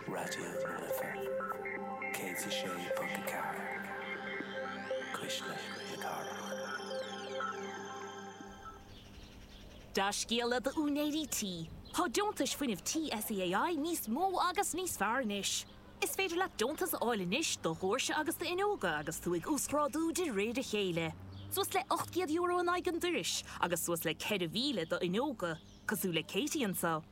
Raidió na Life 106.4, cuisle na cathrach. Dea-scéala d'úinéirí tí, tá deontais fuinnimh tí SEAI níos mó agus níos fearr anois! Is féidir leat deontas a fháil anois do dhóirse agus d'fhuinneoga agus tú ag uasghrádú de réir a chéile. Suas le €800 in aghaidh an doiris agus suas le 4,000 do fhuinneoga. cosúil le Katie anseo.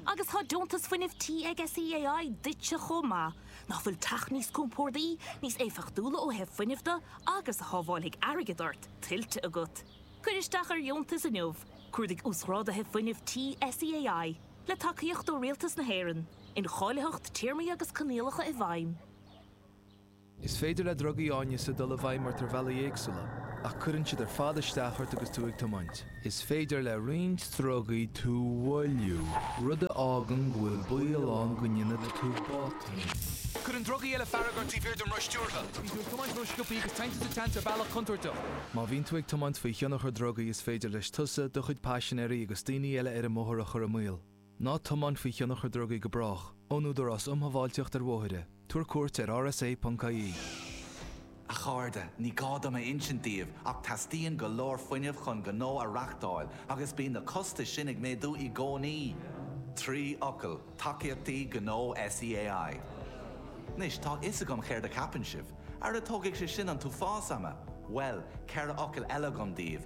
Agus tá deontas fuinnimh tí ag SEAI duitse chomh maith. Nach bhfuil teach níos compórdaí, níos éifeachtúla ó thaobh fuinnimh de agus a shábháilfidh airgead ort, tuillte agat? Cuir isteach ar dheontas inniu, cuardaigh Uasghrádaithe Fuinnimh Tí SEAI, le tacaíocht ó Rialtas na hÉireann, Incháilitheacht, Téarmaí agus Coinníollacha i bhfeidhm. Is féidir le drugaí áineasa dul i bhfeidhm ort ar bhealaí éagsúla, ach cuireann siad ar fad isteach ort agus tú ag tiomáint. Is féidir le roinnt drugaí tú mhoilliú, rud a fhágann go bhfuil baol ann go ndéanfaidh tú botún. Cuireann drugaí eile fearg ort taobh thiar den roth stiúrtha. Bíonn tú ag tiomáint rósciobtha agus téann tú sa tseans ar bhealach contúirteach. Má bhíonn tú ag tiomáint faoi thionchar drugaí is féidir leis tusa, do chuid paisinéirí agus daoine eile ar an mbóthar a chur i mbaol. Ná tiomáin faoi thionchar drugaí go brách, ón Údarás um Shábháilteacht ar Bhóithre, tabhair cuairt ar rsa.ie. A chairde, ní gá dom a insint daoibh ach teastaíonn go leor fuinnimh chun gnó a reáchtáil agus bíonn na costais sin ag méadú i gcónaí! Trí fhocal, Tacaíochtaí Gnó SEAI. Anois, tá a fhios agam céard a cheapann sibh. Ara tógfaidh sé sin an t-uafás ama! Bhuel, ceithre fhocal eile agam daoibh,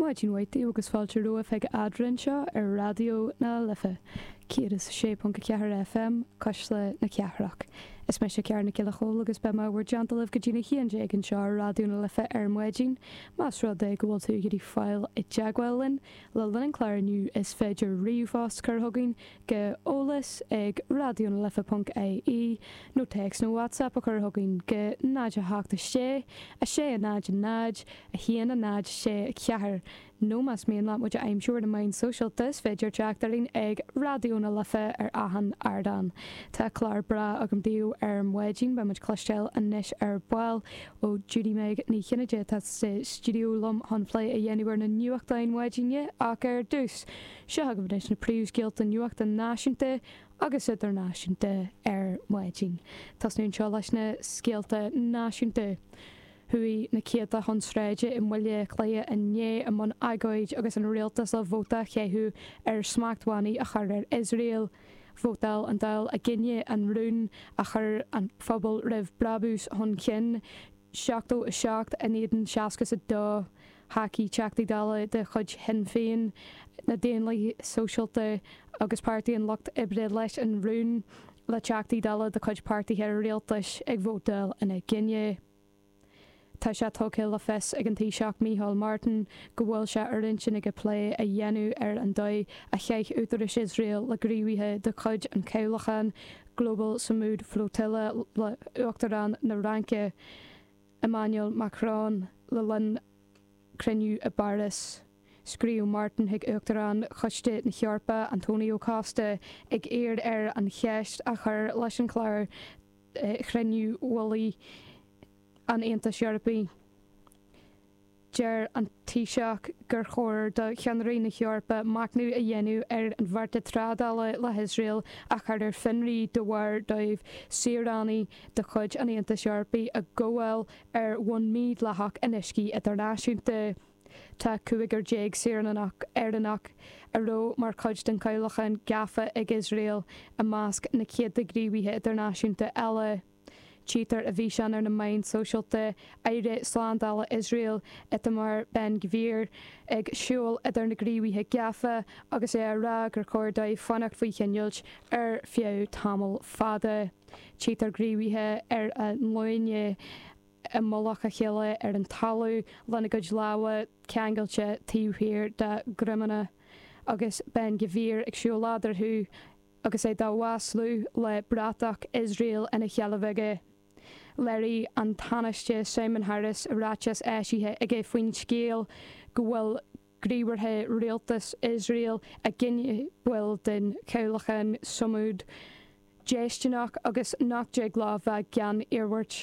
Maidin mhaith daoibh agus fáilte romhaibh chuig Eadra anseo ar Raidió na Life 106.4 FM, Cuisle na Cathrach. Is mise Ciara Nic Giolla Chomhaill agus beidh mé i bhur dteannta libh go dtí'n 11 anseo ar Raidió na Life ar maidin. Más rud é go bhfuil tú ag iarraidh fáil i dteagmháil linn le linn an chláir inniu is féidir ríomhphost cur chugainn go eolas ag Raidió na Life ponc IE nó téacs nó WhatsApp a chur chugainn go 0 7 6 6 0 0 1 0 6 4 nó más mian leat muid a aimsiú ar na meáin sóisialta is féidir teacht orainn ag Raidió na Life ar achan ardán. Tá clár breá agam daoibh ar maidin, beidh muid cloisteáil anois ar ball ó Judy-Meg Ní Chinnéide atá sa stiúideo liom chun plé a dhéanamh ar na nuachtáin mhaidine ach ar dtús, Seo chugaibh anois na príomhscéalta nuachta náisiúnta agus idirnáisiúnta ar maidin. Tosnú anseo leis na scéalta náisiúnta. Chuaigh na céadta chun sráide i mBaile Átha Cliath inné i mbun agóid agus an rialtas ag vóta a chaitheamh ar smachtbhannaí a chur ar Iosrael. Vótáil an Dáil i gcoinne an rún a chuir an pobal roimh brabús chun cinn. 77 in éadan 60 a thacaigh, Teachtaí Dála de chuid Shinn Féin, na Daonlathaithe Sóisialta agus Páirtí an Lucht Oibre leis an rún, le Teachtaí Dála de chuid páirtithe rialtais ag vótáil ina choinne. Tá sé tugtha le fios ag an Taoiseach Micheál Martin go bhfuil sé ar intinn aige plé a dhéanamh ar an dóigh a chaith údarais Iosrael le gníomhaithe de chuid an chabhlacháin Global Sumud Flotilla le hUachtarán na Fhraince Emmanuel Macron le linn cruinniú i bPáras. Scríobh Martin chuig Uachtarán Choiste na hEorpa, Antonio Costa, ag iarraidh air an cheist a chur leis an chlár do chruinniú mhullaigh an Aontais Eorpaigh. Deir an Taoiseach gur chóir do cheannairí na hEorpa machnamh a dhéanamh ar an bheartas trádála le hIosrael a chur ar fionraí de bharr dóibh saoránaigh de chuid an Aontais Eorpaigh a ghabháil ar bhonn mídhleathach in uiscí idirnáisiúnta. Tá cúigear déag saoránach Éireannach a raibh mar chuid den chabhlachán gafa ag Iosrael i measc na céadta gníomhaithe idirnáisiúnta eile. Tchítear i bhfíseán ar na meáin sóisialta aire slándála Iosrael, Itamar Ben Gvir, ag siúl idir na gníomhaithe gafa agus é á rá gur chóir dóibh fanacht faoi choinneáil ar feadh tamall fada. Tchítear gníomhaithe ar a nglúine i mullach a chéile ar an talamh lena gcuid lámha ceangailte taobh thiar dá ndroimeanna agus Ben Gvir ag siúl eadarthu. Agus é dá maslú le bratach Iosrael ina sheilbh aige, léirigh an Tánaiste Simon Harris i ráiteas eisithe aige faoin scéal go bhfuil gníomhartha rialtas Iosrael i gcoinne baill den chabhlachán Sumud déistineach agus nach dtig leo a bheith gan iarmhairt.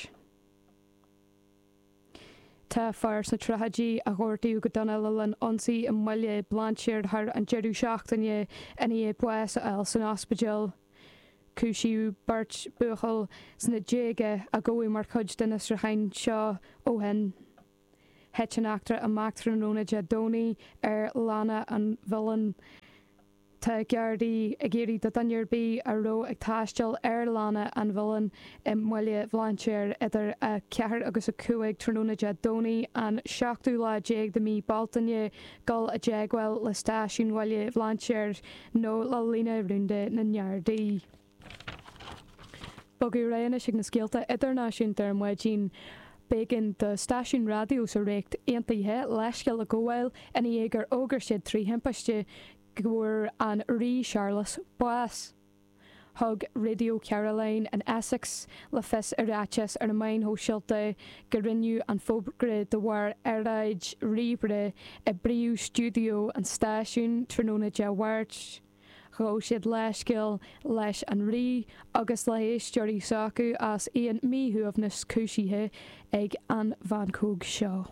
Tá fear sna tríochaidí a gortaíodh go dona le linn ionsaí i mBaile Bhlainséir thar an deireadh seachtaine i ndiaidh bás a fháil san ospidéal. Cúisíodh beirt buachaill sna déaga a gabhadh mar chuid de na fiosrúcháin seo ó shin. Thit an eachtra amach tráthnóna Dé Domhnaigh ar Lána an Mhuilinn. Tá Gardaí ag iarraidh ar dhuine ar bith a raibh ag taisteal ar Lána an Mhuilinn i mBaile Bhlainséir idir 4 agus 5 tráthnóna Dé Domhnaigh an seachtú lá déag de mhí Bealtaine dul i dteagmháil le Stáisiún Bhaile Bhlainséir nó le líne rúnda na nGardaí. Bogadh réidh anois chuig na scéalta idirnáisiúnta ar maidin. B'éigean do stáisiún raidió sa Ríocht Aontaithe leithscéal a ghabháil ina dhiaidh gur fhógair siad trí thimpiste go bhfuair an Rí Searlas bás. Thug Radio Caroline in Essex le fios i ráiteas ar na meáin shóisialta go rinneadh an fógra de bharr earráid ríomhaire i bpríomh-stiúideo an stáisiúin tráthnóna Dé Mháirt. Ghabh siad leithscéal leis an rí agus le héisteoirí s'acu as aon míshuaimhneas cúisithe ag an mheancóg seo.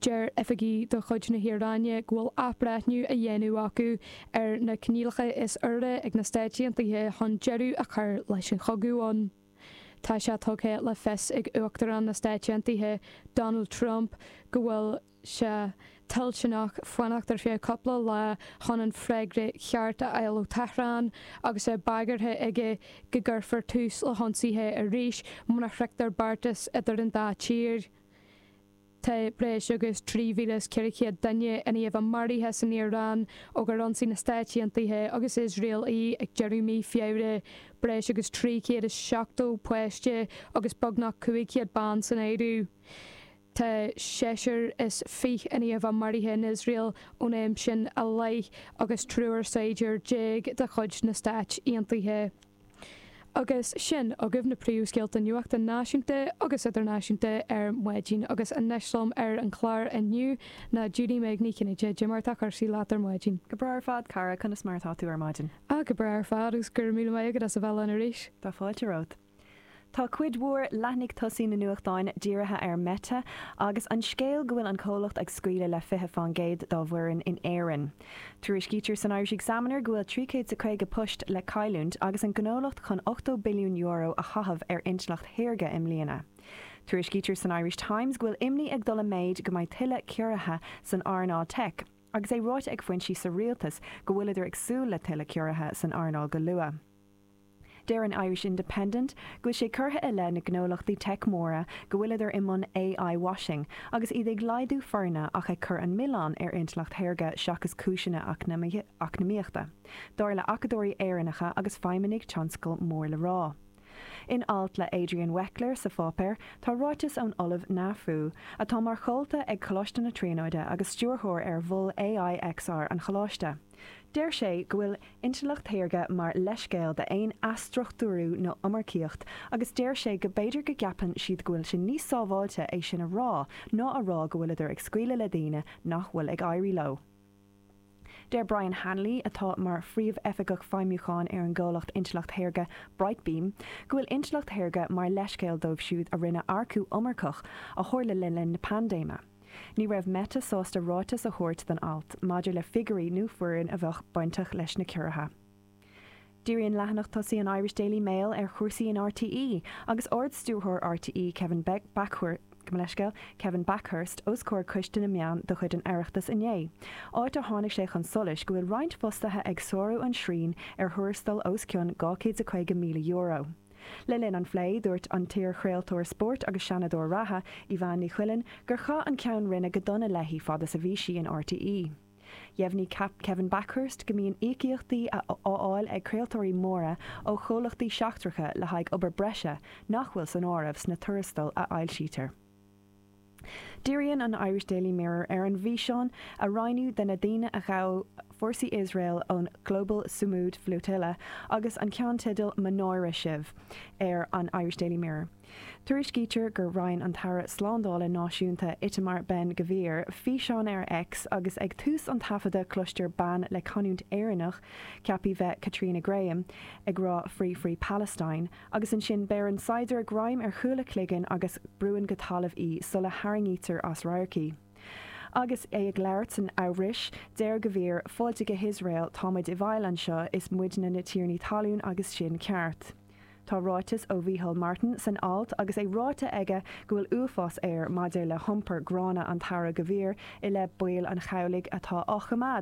Deir oifigí de chuid na hIaráine go bhfuil athbhreithniú á dhéanamh acu ar na coinníollacha is úire ag na Stáit Aontaithe chun deireadh a chur leis an chogadh ann. Tá sé tugtha le fios ag Uachtarán na Stáit Aontaithe Donald Trump go bhfuil sé toilteanach fanacht ar feadh cúpla lá chun an freagra ceart a fháil ó Thehrán agus é bagartha aige go gcuirfear tús le hionsaithe arís mura shroichtear beartas idir an dá tír. Tá breis agus 3,400 duine in ainm is a bheith maraithe san Iaráin ó gur ionsaigh na Stáit Aontaithe agus Iosrael í ag deireadh mí Feabhra, breis agus 370 páiste agus beagnach 500 ban san áireamh. Tá seisear is fiche in ainm is a bheith maraithe in Iosrael ón am sin i leith agus triúr saighdiúr déag de chuid na Stáit Aontaithe. Agus sin agaibh na príomhscéalta nuachta náisiúnta agus idirnáisiúnta ar maidin agus anois liom ar an chlár inniu ná Judy-Meg Ní Chinnéide. Cad é mar atá cúrsaí leat ar maidin. Go breá ar fad, Cara, conas mar atá tú ar maidin? Ah, go breá ar fad agus go raibh míle maith agat as a bheith linn arís. Tá fáilte romhat. Tá cuid mhór leathnaigh tosaigh na nuachtáin dírithe ar Meta agus an scéal go bhfuil an comhlacht ag scaoileadh le fiche faoin gcéad dá bhfoireann in Éirinn. Tuairiscítear san Irish Examiner go bhfuil trí chéad 's a caoga poist le cailliúint agus an gnólacht chun ochtó billiún euro a chaitheamh ar intleacht shaorga i mbliana. Tuairiscítear san Irish Times go bhfuil imní ag dul i méid go mbeidh tuilleadh ciorruithe san earnáil teic agus é ráite ag foinsí sa rialtas go bhfuileadar ag súil le tuilleadh ciorruithe san earnáil go luath. Deir an Irish Independent go bhfuil sé curtha i leith na gnólachtaí teic móra go bhfuileadar i mbun AI washing agus iad ag laghdú foirne ach ag cur an milleán ar intleacht shaorga seachas cúiseanna eacnamaíochta, dar le acadóirí Éireannacha agus feidhmeannaigh tionscail mór le rá. In alt le Adrian Weckler sa pháipéar tá ráiteas ón Ollamh Na Fu, atá mar chomhalta ag Coláiste na Tríonóide agus stiúrthóir ar Mhol AI XR an choláiste. Deir sé go bhfuil intleacht shaorga mar leithscéal d'aon athstruchtúrú nó iomarcaíocht agus deir sé go b'fhéidir go gceapann siad go bhfuil sé níos sábháilte é sin a rá ná a rá go bhfuileadar ag scaoileadh le daoine nach bhfuil ag éirí leo. Deir Brian Hanley, atá mar Phríomh-Oifigeach Feidhmiúcháin ar an gcomhlacht intleacht shaorga Brightbeam, go bhfuil intleacht shaorga mar leithscéal dóibh siúd a rinne earcú iomarcach a tharla le linn na paindéime. Ní raibh Meta sásta ráiteas a thabhairt don alt maidir le figiúirí nó foireann a bheadh bainteach leis na ciorruithe. Díríonn leathanach tosaigh an Irish Daily Mail ar chúrsaí in RTÉ agus Ard-Stiúrthóir RTÉ Kevin Bakhurst, os comhair Coiste na Meán de chuid an Oireachtais inné, áit ar tháinig sé chun solais go bhfuil roinnt fostaithe ag sárú an tsriain ar thuarastail os cionn €250,000. Le linn an phlé, dúirt an t-iarchraoltóir spóirt agus Seanadóir reatha, Evanne Ní Chuilinn, gur chaith an Ceann Roinne go dona léi fad is a bhí sí in RTÉ. Dheimhnigh Kevin Bakhurst go mbíonn íocaíochtaí á fháil ag craoltóirí móra ó chomhlachtaí seachtracha le haghaidh obair breise nach bhfuil san áireamh sna tuarastail a fhoilsítear. Díríonn an Irish Daily Mirror ar an bhfíseán a roinneadh de na daoine a ghabh fórsaí Iosrael ón Global Sumud Flotilla agus an ceannteideal Mo náire sibh ar an Irish Daily Mirror. Tuairiscítear gur roinn an tAire Slándála Náisiúnta Itamar Ben Gvir físeán ar X agus ag tús an taifeadadh cloistear bean le canúint Éireannach, ceaptha a bheith Caitríona Graham, ag rá Free, free Palestine! agus ansin beireann saighdiúir greim ar chúl a cloiginn agus brúann go talamh í sula tharraingítear as radharc í. Agus é ag labhairt san Eabhrais, deir Gvir, Fáilte go hIosrael, tá muid i bhfeighil anseo, is muidne na tiarnaí talún agus sin ceart. Tá ráiteas ó Mhicheál Martin san alt agus é ráite aige go bhfuil uafás air maidir le hiompar gránna an tAire Gvir i leith baill an chabhlaigh atá á choimeád go